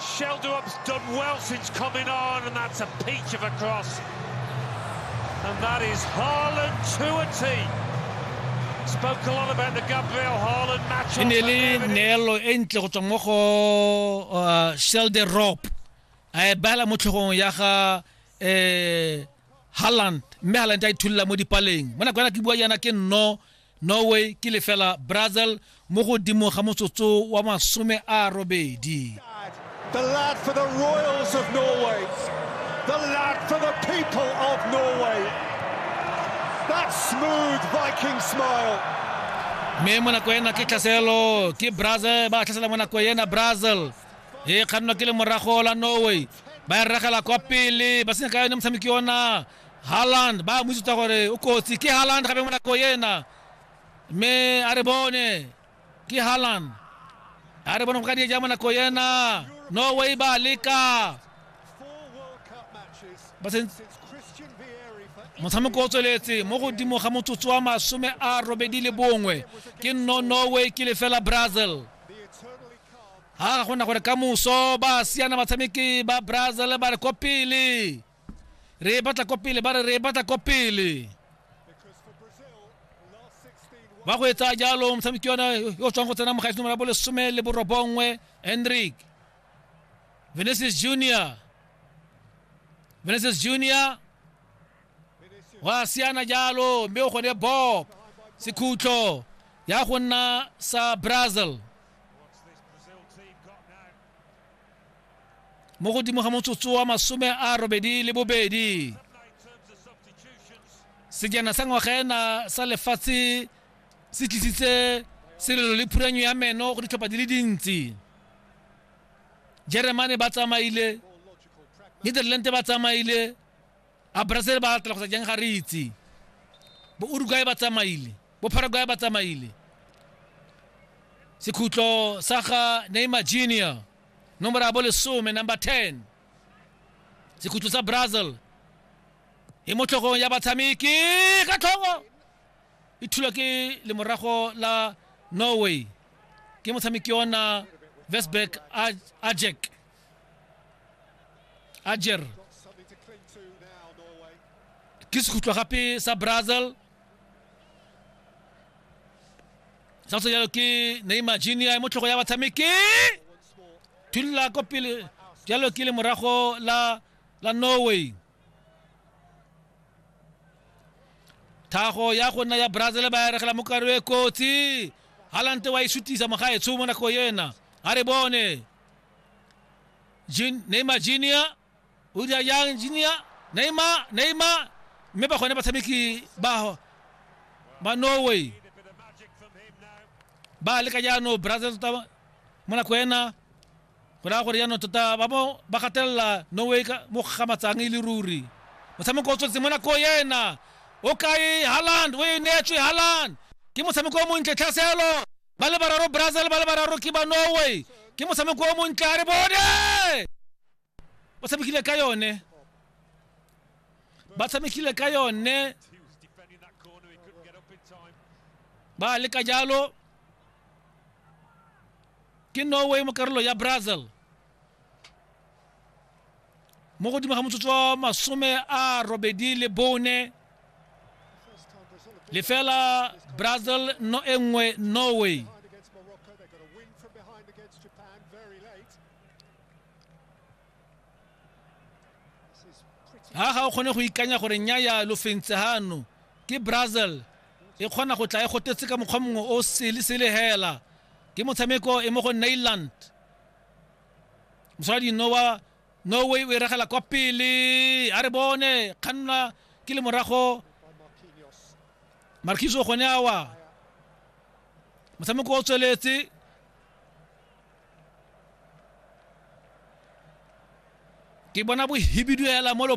Sheldup's done well since coming on, and that's a peach of a cross. And that is Haaland to a T. Spoke a lot about the Gabriel Haaland match. e ne le neelo e ntle go tswa mo go uh, shelde rop a e beela mo tlhogong ya ga um halland mme halland a itholola mo dipaleng mo nakwana ke bua yana ke nno norway ke lefela brazil mo godimo ga motsotso wa masome a robedi The lad for the Royals of Norway. The lad for the people of Norway. That smooth Viking smile. mme mo nako ena ke tlhaselo ke brazil ba tlhasela mo nako ena brazil e kgannwa ke le morago la norway ba e regela kwa pele ba senya ka yone motshameki ona Haaland ba mo itsuta gore o kotsi ke Haaland gape mo nako ena mme a re bone ke Haaland a re bone go ka dieja mo nako ena no way ba leka motshameko o tsweletse mo godimo ga motsotso wa masome a robedi le bongwe ke no norway ke lefela brazil ga ga gona gore ka moso ba siana batshameki ba brazil ba re ko pele re e batla ko pele ba re re e batla ko pele ba go etsa jalo motshameki yona yo o tswang go tsena mogaisi nomoro ya bolesome le borobongwe hendrik venesis junior venesis junior wa siana jalo mme o gone bob sekhutlo ya go nna sa brazil mo godimo ga motsotso wa masome a robedi le bobedi sejana sa ngwaga ena sa lefatshe se tlisitse selelo le phuranyo ya meno go ditlhopha di le dintsi jeremane ba tsamaile netherland ba tsamaile A Brazil ba latela kgotsa jang ga re itse. Bo Uruguay ba tsamaile. Bo Paraguay ba tsamaile. Sekhutlo sa ga Neymar Junior. Nomoro ya bo lesome, number 10. Sekhutlo sa Brazil. E mo tlhogong ya batshameki ka tlhogo. E thulwa ke lemorago la Norway. Ke motshameki ona Vesberg Ajek. ajer ke sekhutlwa gape sa brazil sa go jalo ke neymar junior mo tlhogo ya batshameki thulla ko pele jalo ke le morago la la norway thago ya go nna ya brazil ba eregela mo karo e kotsi halante wa e sutisa mogaetsho mo nako yena a re bone Jun- neymar junior o dira yang junior neymar neymar mme ba gone batshameki ba ba norway ba leka jaanong brazil tota mo nako ena go raya gore jaanong tota ba mo ba gatelela norway ka mo gamatsang e le ruri motshameko o tswetse mo nako ena o kae haland o e neetswe haland ke motshameko o montle tlhaselo ba le bararo brazil ba le bararo ke ba norway ke motshameko o montle a re bone ba tshamekile ka yone ba tshamekile ka yone ba le ka jalo ke norway mo karolo ya brazil mo godimo ga motsotso wa masome a robedi le bone lefela brazil no e nngwe norway ha ga o kgone go ikanya gore nyaya lo fentse hano ke brazil e kgona go tla e gotetse ka mokgwa mongwe o sele sele hela ke motshameko e mo go nailand mosadi no wa norway o e regela kwa pele a re bone kganna ke le morago markiso gone awa motshameko o tsweletse ke bona bohibidu hela mo